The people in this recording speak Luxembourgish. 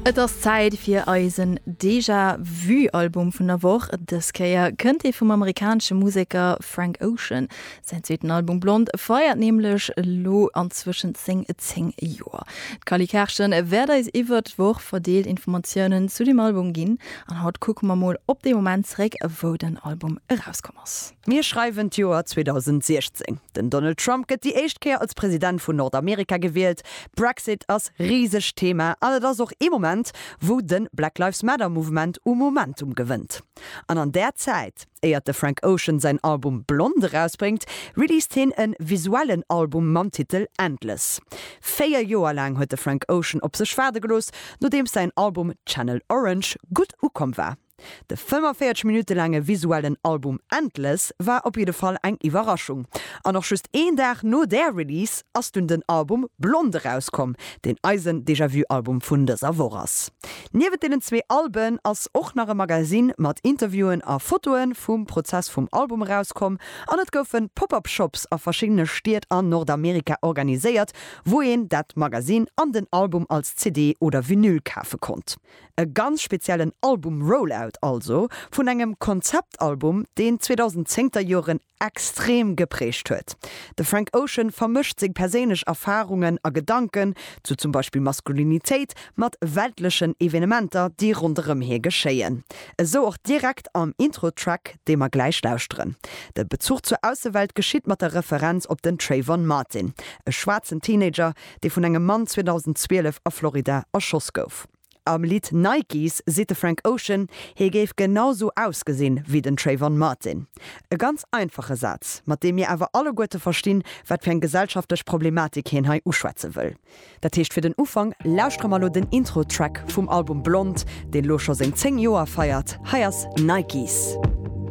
Et ass Zäit fir eisen Déjà Vu Album vun der Woch. Dës Kéier kënnt ee vum amerikanesche Museker Frank Ocean. Säin zweeten Album Blond feiert nämlech elo anzwëschent seng 10 Joer. D'Cally Kerschen wäert eis iwwert d'Woch verdeelt Informatiounen zu dem Album ginn. An haut kucke mer mol op dee Moment zeréck, wou den Album erauskomm ass. Mir schreiwen d'Joer 2016. Den Donald Trump gëtt déi éischt Kéier als President vun Nordamerika gewielt. Brexit ass riseg Thema an et ass och ee Moment wou den Black Lives Matter Mouvement u Momentum gewënnt. An an där Zäit, éiert de Frank Ocean säin Album Blond erausbréngt, released heen en visuellen Album mam Titel Endless. Véier Joer laang huet de Frank Ocean op sech waarde gelooss, nodeems säin Album Channel Orange gutt ukomm war. De 45 Minutte laange visuellen Album Endless war op jidde Fall eng Iwwerraschung. An och just een Dag no där Release ass dunn den Album Blond erauskomm, deen eisen Déjà-Vu-Album vun dëser Woch ass. Niewent deenen zwee Alben ass och nach e Magazine mat Interviewen a Fotoe vum Prozess vum Album erauskomm an et goufe Pop-Up Shops a verschiddene Stied an Nordamerika organiséiert, wou een dat Magazine an den Album als CD oder Vinyl kafe konnt. E ganz speziellen Album-Rollout also vun engem Konzeptalbum, deen d'zweedausend-zéngter Joren extrem geprägt huet. De Frank Ocean vermëscht seng perséinlech Erfarungen a Gedanken zu zum Beispill Maskulinitéit mat weltlechen Evenementer, déi ronderëm hie geschéien. Esou och direkt am Intro-Track, dee mer gläich lauschteren. De Bezuch zur Aussewelt geschitt mat der Referenz op den Trayvon Martin, e schwaarzen Teenager, dee vun engem Mann 2012 a Florida erschoss gouf. Am Lidd Nikes seet de Frank Ocean, hie géif genau sou ausgesinn, wéi den Trayvon Martin. E ganz einfache Saz, mat deem mir awer alleguerte verstinn, wat fir eng gesellschaftlech Problematik hien hei uschwätze wëll. Dat heescht fir den Ufank, lauschtere mer elo den Intro-Track vum Album Blond, deen elo scho seng 10 Joer feiert. Hei ass Nikes.